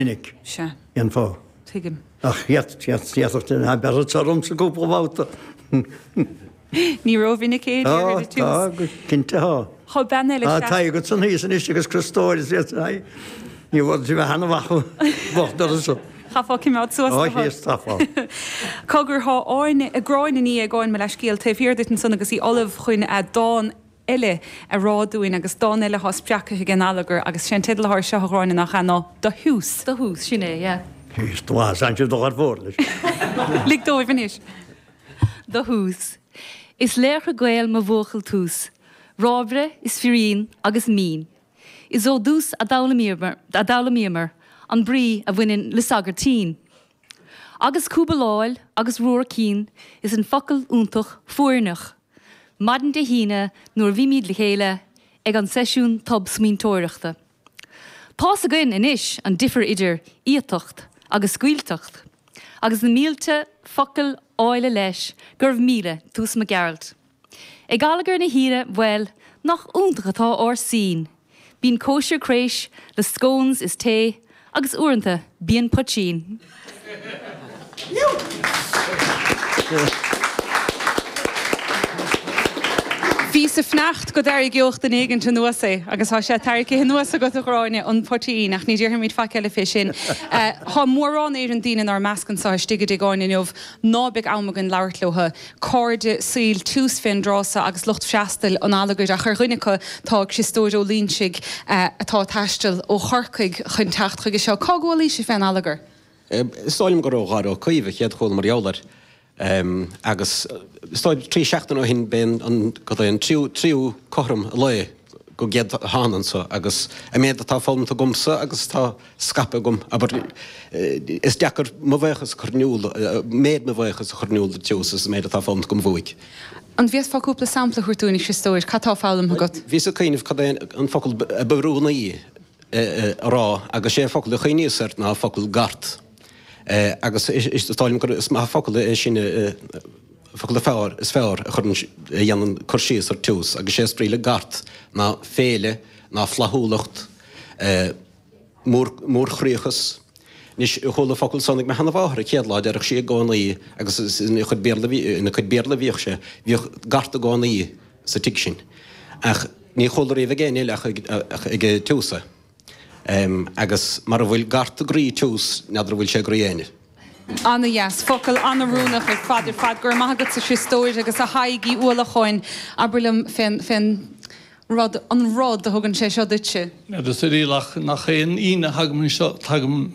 minic. Sea. Cén fáth? Tuigim. Ach d'fhéadfadh duine a bheith beirthe ormsa cúpla babhta. Ní rómhinic é, a deir Tá, Edith tá, Jones. go cinnte tá. Tá bean eile Tá, sean. tá agat san thíos anois agus Cristóir is iad san aghaidh. Ní bhfuair tú bheith an-mhaith bocht doras. Chaithfeá cimeád suas Ó, le thú. thíos, tá fá. Cá gur thá áin, gráin an í ag áin mo leath-scéal, taobh thiar duit ansan agus í ullamh chun dán. eile a rá dúinn agus dán eile atá spreagtha ag an allagar agus is é an teideal atá air seo, a Ghráinne, nach ea? ná 'Do Thoose'. Do Thoose, sin é, yeah. Is tú as aimsir do dheirfiúr anois. Lig dóibh anois. Do Thoose. Is laochra Gael mo bhuachaill Toose, rábaire is firín agus mín. Is ó Toose a d'fhoghlaimíomar an brí a bhaineann le sagairtín. Agus cúbaláil agus ruar cinn is an focal iontach foirneach. Maidin Dé hAoine, nuair a bhímid le chéile ag an seisiún tobsmaointeoireachta. Tá's againn anois an difear idir iatacht agus scaoilteacht, agus na mílte focal áille leis go raibh míle, Toose Mac Gearailt. Ag allagar na hAoine, bhuel, nach iontach atá ár Scene! Bíonn cóisir craois le scones is tae agus uaireanta bíonn poitín. Bhíos ag fanacht go dtarraiceodh duine éigint anuas é agus tá sé tarraicthe anuas agat, a Ghráinne, an poitín, ach ní déarfaimid faic eile fé sin. Tá mórán Éireann daoine in ár measc anseo istigh i dTigh Eoghain inniu ná beidh am againn labhairt leo. cairde saoil Toose féin, drása agus lucht freastail an allagair, ach ar dhuine acu, tá Criostóir Ó Loinsigh, atá ag taisteal ó Chorcaigh chun teacht chuige seo. Cá gcualaigh sé fén allagar? Is dóigh liom gur ó Dháire Ó Caoimh, a chéad chuala mar gheall air, agus is dóigh trí seachtaine ó shin, b'é an, cad é, an tríú, tríú cothrom an lae. go gcéad thána anso, agus an méad atá foghlamta agamsa agus atá scaipthe agam, abair, is deacair mo bhaochas a chur in iúl, méad mo bhaochais a chur in iúl do Thoose as an méad atá foghlamta agam uaidh. An bhféadfá cúpla sampla a thabhairt dúinn, a Chriostóir, cad tá foghlamtha agat? Bhíos ag cuimhneamh cad é an focal ab oiriúnaí a rá, agus 'sé an focal a chuimhníos air ná an focal 'gart', agus is dóigh liom gur, is maith an focal é sin. focal fearr is fearr a chuireann, a dhéanann cur síos ar Toose, agus 'sé is brí le gart ná féile, ná flaithiúlacht, mórchroíochas. Anois, chuala an focal san ag mo sheanamháthair a chéad lá, déarfadh sí i gcónaí, agus is ina chuid Béarla, ina cuid Béarla a bhíodh sé, bhíodh gart i gcónaí sa tigh sin, ach ní chuala riamh ag éinne eile ach ag, ag Toose é. Agus mara bhfuil gart i gcroí Toose, n'fheadar a bhfuil sé i gcroí éinne. Ana-dheas. Focal an-oiriúnach ar fad ar fad. Go raibh maith agat a Chriostóir agus a Thaidhg Uí Uallacháin. Abair liom fén fén rud, an rud, a thugann sé seo duitse. Ag oiriúnach gach aon Aoine a thagaim anseo, tagaim,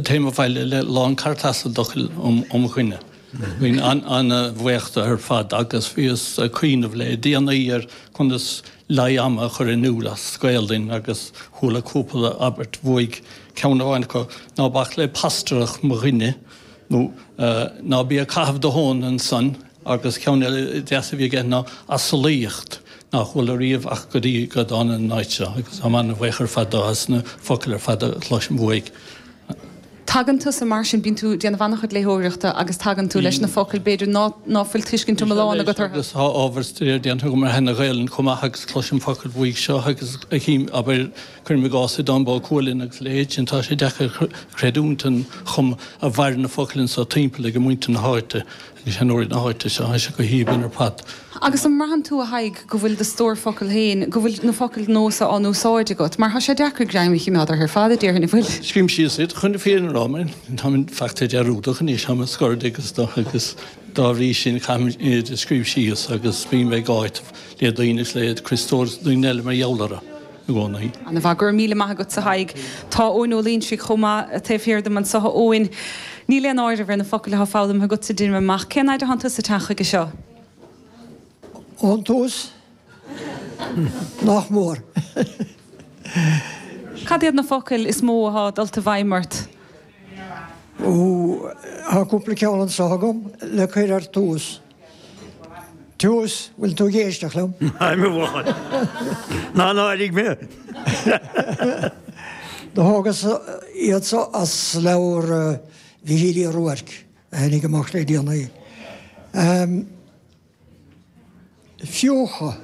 téim abhaile le lán cartasa d'fhocail ó mo dhuine. Bím an-bhaoch de ar fad agus bhíos ag cuimhneamh le déanaí ar conas leithe ama a chur in iúl as Gaoluinn agus chuala cúpla abairt uaidh Ceann amháin acu, Ná bac le pastaireacht mo dhuine, nó Ná bí ag caitheamh do thóin ansan, agus ceann eile deas a bhí aige ná Asarlaíocht nach bhfuil ariamh ach go dtí go dtáinig an áit seo, agus táim an-bhaoch ar fad dó, as na focail ar fad a chloisim uaidh. Tagann tusa, mar sin, bíonn tú ag déanamh an-chuid léitheoireachta agus tagann tú leis na focail, b'fhéidir, ná fuil tuiscint iomlán agat orthu. Anois, tá ábhar staire déanta agam ar sheana-Ghaelainn chomh maith agus cloisim focail uaidh seo agus a chím, abair, Cuirim i gcás, i dTáin Bó Cuailgne agus a leithéid, tá sé deacair creidiúint an chuma a mhaireann na focail anso timpeall ag muintir na háite, ag seanóirí na háite seo, tá siad go haoibhinn ar fad. Agus an mbraitheann tú, a Thaidhg, go bhfuil do stór focal féin, go bhfuil na focail nua so á n-úsáid agat? Mar tá sé deacair greim a chimeád orthu ar fad, a déarfainn, an bhfuil? Scrím síos iad, chun na fírinne a rá, mar tá mé fachta dearúdach anois, tá mé scór d'aois, agus dá bhrí sin caithim iad a scríobh síos agus bím ag áiteamh le daoine agus le Criostóir agus daoine eile mar gheall orthu. i gcónaí. Ana-mhaith. Go raibh míle maith agat a Thaidhg. Tá Eoin Ó Loingsigh chomh maith taobh thiar díom anseo. A Eoin, níl aon áireamh ar na focail atá foghlamtha agatsa, deinim amach. Cén fhaid atánn tusa ag teacht chuige seo? Ón tús? Nach mór. Cad iad na focail is mó athá dulta i bhfeidhm ort? Ó, thá cúpla ceann anso agam le cur ar dtús. Tiús, bhfuil tú ag éisteacht liom? Ná mé bháil. Ná ná airigh mé. Do thógas iad so as leabhar Mhíchíl Uí Ruairc a tháinig amach le déanaí. Fiuchadh.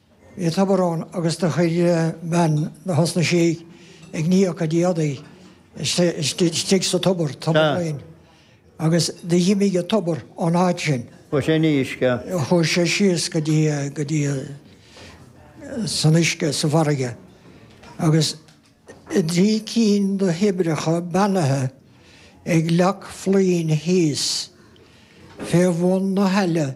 Bhí an tobar ann agus do chuir bean tosnaigh sí ag ní a cuid éadaí istigh sa tobar, tobar ann, agus do dh'imigh an tobar ón áit sin. Chuaigh sé síos go dtí, go dtí, san uisce sa bhfarraige agus tá trí cinn do thoibreacha beannaithe ag Leac Fluinn thíos fé bhun na haille,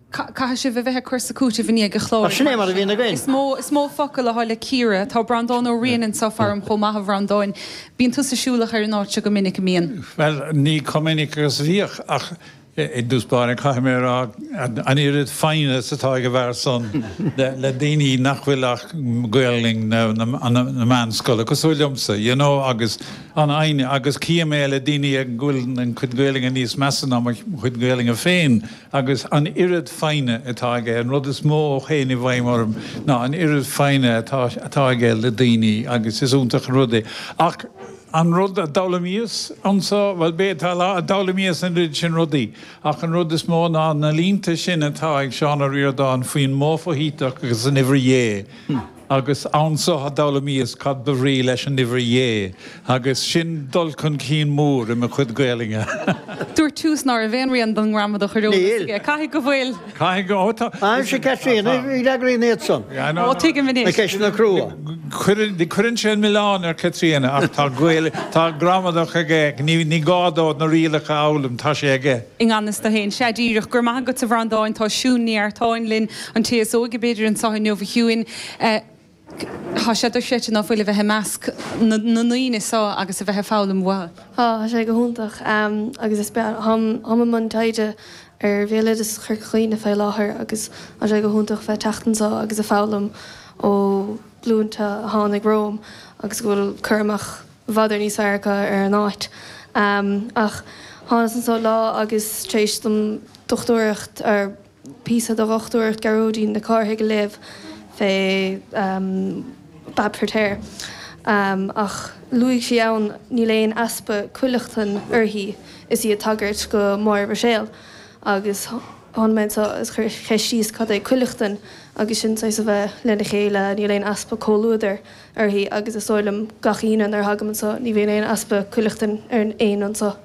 Caithfidh sibh a bheith ag cur is ag cúiteamh i ndiaidh an chláir, Sin é mar a bhíonn againn. Is mó is mó focal atá le cíoradh. Tá Breandán Ó Riain anseo faram chomh maith, a Bhreandáin. Bíonn tusa siúlach ar an áit seo go minic, an mbíonn? Bhuel, ní chomh minic agus a bhíodh, ach i dtús báire caithfidh mé a rá an oiread foighne is atá ag an bhfear san le daoine nach bhfuil ach Gaolainn na meánscoile cosúil liomsa, you know, agus an fhoighne, agus chím é le daoine a bhfuil a gcuid Gaolainne níos measa ná mo chuid Gaolainne féin. agus an oiread foighne atá aige, an rud is mó a théann i bhfeidhm orm ná an oiread foighne atá atá aige le daoine, agus is iontach an rud é. Ach an rud a d'fhoghlaimíos anso, bhuel, b'é atá lá, a d'fhoghlaimíos an oiread sin rudaí, ach an rud is mó ná na línte sin atá ag Seán Ó Ríordáin faoin modh foshuiteach agus an uimhir dhé, Agus anso a d'fhoghlaimíos cad ba bhrí leis an uimhir dhé, agus sin dul chun cinn mór i mo chuid Gaelainne. Dúirt Toose ná raibh aon rian den ngramadach ar eolas Níl. aige. Caithfidh go bhfuil. Caithfidh go, ó tá. Tá, aimsigh Caitríona, í a fhreagraíonn iad san. Yeah, no, Ó, no. tuigim anois. Na ceisteanna crua. Cuireann, cuireann sé an milleán ar Chaitríona ach tá Gael, tá gramadach aige, ní, ní gá dó na rialacha a fhoghlaim, tá sé aige. I ngan fhios dó fhéin. Sea, díreach. Go raibh maith agatsa, a Bhreandáin. Tá Siún Ní Artáin linn. An té is óige, b'fhéidir, anseo inniu, a Shiún, tá sé dochreidte ná fuil a bheith i measc na ndaoine seo agus a bheith ag foghlaim uathu. Tá sé go hiontach agus is breá. Táim i mbun taighde ar bhéaloideas Chorca Dhuibhne fé láthair agus tá sé go hiontach a bheith ag teacht anso agus ag foghlaim ó ghlúinte a tháinig romham agus go bhfuil cur amach i bhfad Éireann níos fearr acu ar an áit. Ach thánas anso lá agus tar éis dom dochtúireacht a píosa de dhochtúireacht Gearóidín Nic Cárthaigh a léamh fé Bab Feiritéar, ach luaigh sí ann, níl aon easpa cuileachtan uirthi is í ag tagairt go Máire Ruiséal, agus tháinig mé anseo is cheistíos cad é cuileachtain, agus sin saghas a bheith lena chéile, níl aon easpa comhluadair uirthi agus is dóigh liom gach Aoine nuair a thagaim anseo ní bhíonn aon easpa cuileachtain orainn féin anseo.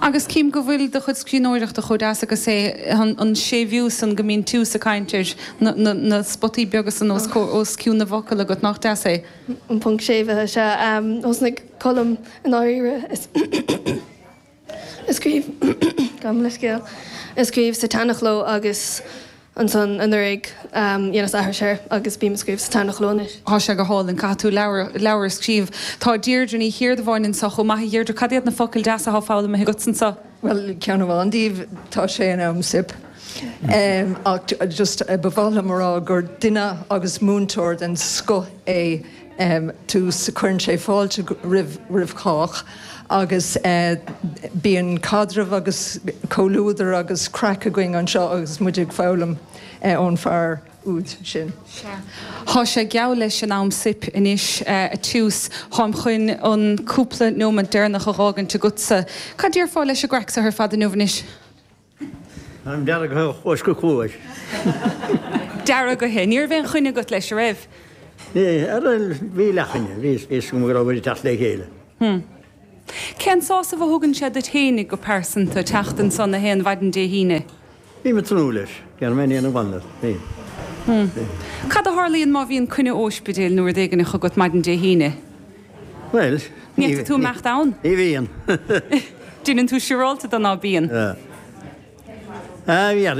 Agus cím go bhfuil do chuid scríbhneoireachta chomh deas agus é, an séimhiú san go mbíonn Toose ag caint air, na spotaí beaga san os cionn na bhfocal agat, nach deas é? An ponc séimhithe, sea. Thosnaigh Colm i ndáiríre. ag scríobh, gabhaim leithscéal, ag scríobh sa tseanchló agus ansan anuraidh dheineas aithris air agus bím ag scríobh sa tseanchló anois. Tá sé go hálainn. Caithfidh tú leabhar a scríobh. Tá Deirdre Ní Chiardubháin anseo chomh maith. A Dheirdre, cad iad na focail deasa atá foghlamtha agatsa anseo? Bhuel, ceann amháin díobh, tá sé in am soip. Ach just, ba mhaith liom a rá gur duine agus múinteoir den scoth é. dtús, cuireann sé fáilte roimh chách agus bíonn caidreamh agus comhluadar agus craic againn anseo agus muid ag foghlaim ón bhfear úd sin. Tá sé geall leis an am scoir anois, a Tiús, táim chun an cúpla nóimeant deireanach a fhágaint agatsa. Cad déarfá leis an gcraic so ar fad inniu anois? An dearg ó chluais go cluais. deargaithe. Ní raibh aon choinne agat leis, a raibh? Bhí, a raibh, bhí leathchoinne. Bhí a fhios agam go raibh muid ag teacht le chéile. Hm. Cén sásamh a thugann sé duit fhéinig go pearsanta teacht anso gach aon mhaidin Dé hAoine? Bím ag tnúth leis. Déanfaidh mé aon bhanda. Bím. Hm. Cad a tharlaíonn má bhíonn coinne óispidéil nó rud éigineach agat maidin Dé hAoine? Bhuel, ní. Ní fhéadfaidh tú imeacht ann. Ní bhíonn. Déanann tú siúráilte de ná bíonn. Bhíonn.